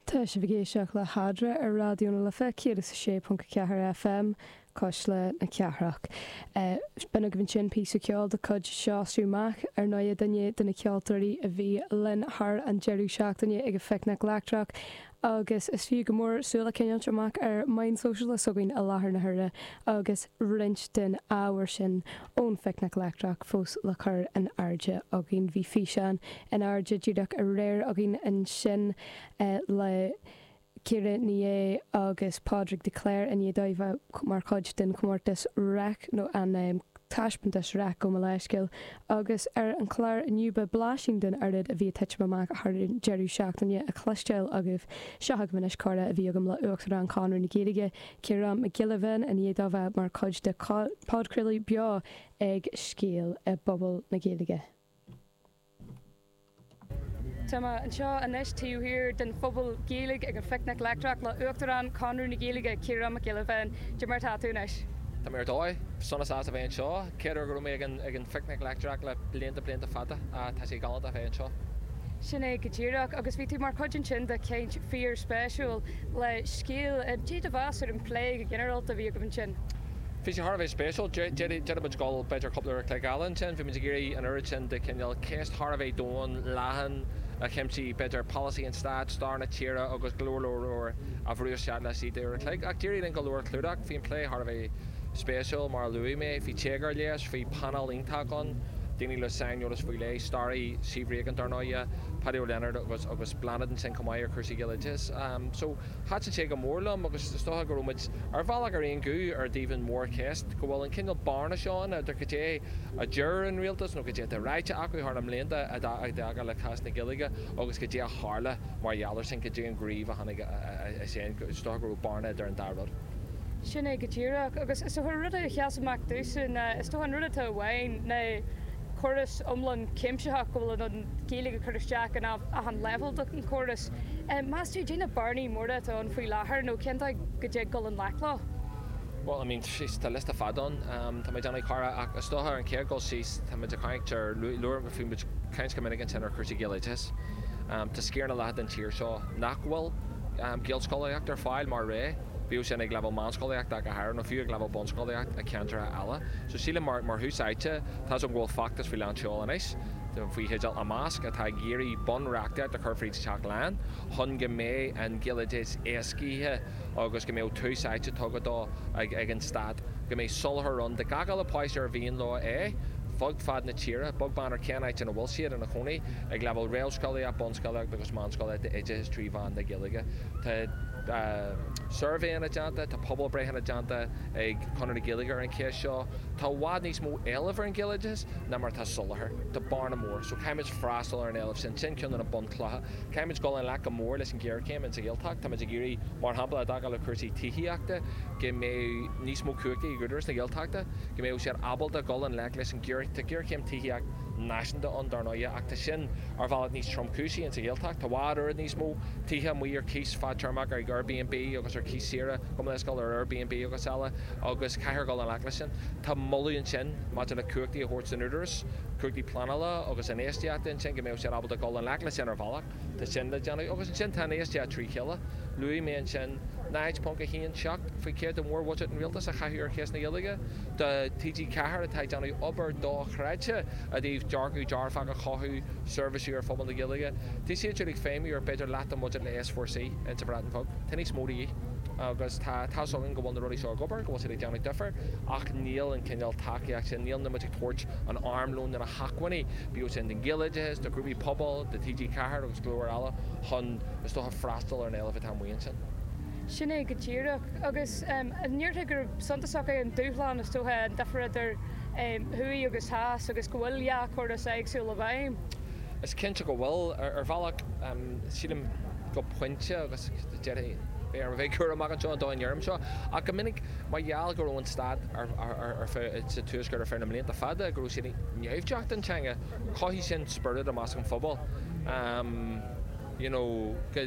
Tá sibh ag éisteacht le hAdhra ar Raidió na Life 106.4 FM, Cuisle na Cathrach. B'in agaibh ansin píosa ceoil de chuid Seosamh Mac ar ndóigh, duine de na ceoltóirí a bhí linn thar an deireadh seachtaine ag an Phicnic Leictreach agus is fiú go mór súil a choinneáilt amach ar mheáin shóisialta s'againn i láthair na huaire agus roinnt den ábhar sin Ón phicnic leictreach fós le cur in airde againn, bhí físeán in airde díreach aréir againn ansin le Ciara Ní É agus Pádraig de Cléir i ndiaidh dóibh a bheith mar chuid den chomórtas Reic, nó an taispeántas Reic gabh mo leithscéal. Agus ar an chlár inniu beidh blaisín den oiread a bhí ag titim amach thar an deireadh seachtaine a chloisteáil agaibh. Seo chugaibh anois comhrá a bhí agam le Uachtarán Chonradh na Gaeilge, Ciarán Mac Giolla Bhéin i ndiaidh dó bheith mar chuid de phodchraoladh beo ag Scéal i bPuball na Gaeilge. Tá mé anseo anois taobh thiar den Phuball Gaeilge ag an Phicnic Leictreach le Uachtarán Chonradh na Gaeilge, Ciarán Mac Giolla Bhéin. Cad é mar atá tú anois? Tá mé ar dóigh. Sona sásta a bheith anseo. Céad uair go raibh mé ag an Phicnic Leictreach le blianta, blianta fada? Ah, tá sé galánta a bheith anseo. Sin é go díreach, agus bhí tú mar chuid ansin de chaint fíor-spéisiúil le scéal cad é do mheas ar an bplé go ginearálta a bhí agaibh ansin. Bhí sé thar a bheith spéisiúil. D'fhéadfadh muid dul b'fhéidir cúpla uair an chloig eile ansin. Bhí muid ag iarraidh an oiread sin de chineál cheist thar a bheith domhain, leathan a chuimsigh b'fhéidir polasaí an stáit, stair na tíre agus go leor leor leor a bhrú isteach laistigh d'uair a chloig. Ach d'éirigh linn go leor a chlúdach. Bhí an plé thar a bheith. spéisiúil, mar a luaigh mé, bhí téagar leis, bhí painéal iontach ann, daoine le saineolas faoi leith, staraí, Steve Regan dar ndóighe, Páidí Ó Lionáird agus, agus Bláthnaid ansin chomh maith ar chúrsaí Gaeloideachais. So, thaitin an plé go mór liom agus is dócha go raibh muid, ar bhealach, ar aon ghuth i dtaobh an mhórcheist, go bhfuil an cineál bearna seo ann idir cad é a deir an rialtas nó cad é atá ráite acu thar na mblianta i dtaca le cás na Gaeilge agus cad é a tharla mar gheall ar sin, cad é an gníomh a tháinig as sin, is dócha go raibh bearna idir an dá rud. Sin é go díreach. Agus is dócha an rud a sheas amach domhsa ná, is dócha, an rud atá uainn ná córas iomlán cuimsitheach go bhfuil an Ghaeilge ag cur isteach in achan leibhéal d'achan chóras. Meas tú, cad é na bearnaí móra atá ann faoi láthair nó cén dóigh go dtig dul i ngleic leo? Bhuel, I mean, tá liosta fada ann, tá mé ag déanamh comhrá ach is dócha ar an chéad dul síos, tá muid ag caint ar, Bhí muid ag caint go minic ansin ar chúrsaí Gaeloideachais. Tá sciar na leath den tír seo nach bhfuil Gaelscolaíocht ar fáil mar rogha, bíodh sin ag leibhéal meánscolaíochta ach go háirithe, nó fiú ag leibhéal bunscolaíochta i ceantracha eile. So sílim, mar thús áite, tá a fhios againn go bhfuil feachtas faoi lán tseoil anois, faoi theideal Imeasc, atá ag iarraidh bunreachtaíocht a chur fríd Teach Laighean chun go mbeidh an Gaeloideachas éascaithe, agus go mbeadh tús áite tugtha dó ag an stát, go mbeadh soláthar ann do gach uile páiste ar mhian leo é, fud fad na tíre, beag beann ar cén áit ina bhfuil siad ina gcónaí, ag leibhéal réamhscolaíocht, bunscolaíocht agus meánscolaíocht d'oideachas trí mheán na Gaeilge. Tá suirbhéanna déanta, tá pobalbhreitheanna déanta ag Conradh na Gaeilge ar an cheist seo. Tá i bhfad níos mó éilimh ar an ghaeloideachas ná mar atá soláthar. Tá bearna mór, so caithfimid freastal ar an éileamh sin, sin ceann de na clocha. Caithfimid dul i ngleic go mór leis an ghéarchéim insa Ghaeltacht. Táimid ag iarraidh, mar shampla, i dtaca le cúrsaí tithíochta, go mbeadh níos mó cumhachtaí ag Údarás na Gaeltachta, go mbeadh siad ábalta dhul i ngleic leis an ngéar, tá géarchéim tithíocht náisiúnta ann, dar ndóighe, ach tá sin ar bhealach níos tromchúisí insa Ghaeltacht. Tá a fhad oiread níos mó tithe amuigh ar cíos fadtéarmach, ar Airbnb agus ar cíos saoire gearrthéarmach ar Airbnb agus eile, agus caithfear dhul i ngleic leis sin. Tá moladh ansin maidir le cumhachtaí a thabhairt don Údarás, cumhachtaí pleanála agus infheistíochta ansin, go mbeadh. siad ábalta dhul i ngleic le sin ar bhealach, tá sin le déanamh, agus ansin tá an infheistíocht trí chéile. Luaigh mé ansin 0.17 faoi chéad de mhórbhuiséad an rialtais a chaitheamh ar cheist na Gaeilge, do TG4 atá ag déanamh obair do-chreidte i dtaobh dearcadh dearfach a chothú, seirbhísí do phobal na Gaeilge. Bhí siad siúd ag feidhmiú ar b'fhéidir leath den bhuiséad le S4C ins an Bhreatain Bheag, tá níos mó de dhíth, agus tá a fhios againn go bhfuil na rudaí seo ag obair, go bhfuil siad ag déanamh difir, ach níl an cineál tacaíocht sin, níl muid ag tabhairt an armlón na na hacmhainní, Bhíodh sé don Ghaeloideachas, do ghrúpaí pobail, do TG4 agus go leor eile chun, is dócha, freastal ar an éileamh atá amuigh ansin. Sin é go díreach. Agus ndéarfá gurb suntasach é an dúshlán, is dócha, an difear idir thuaidh agus theas agus go bhfuil dhá chóras éagsúil i bhfeidhm. Is cinnte go bhfuil, ar bhealach. Sílim, go pointe, agus beidh orm a bheith cúramach anseo an dóigh a ndeirim seo, ach go minic mar gheall go raibh an stát sa Tuaisceart ar feadh na mblianta fada, go raibh siad naimhdeach don teanga, chothaigh sin spiorad i measc an phobail, you know, go.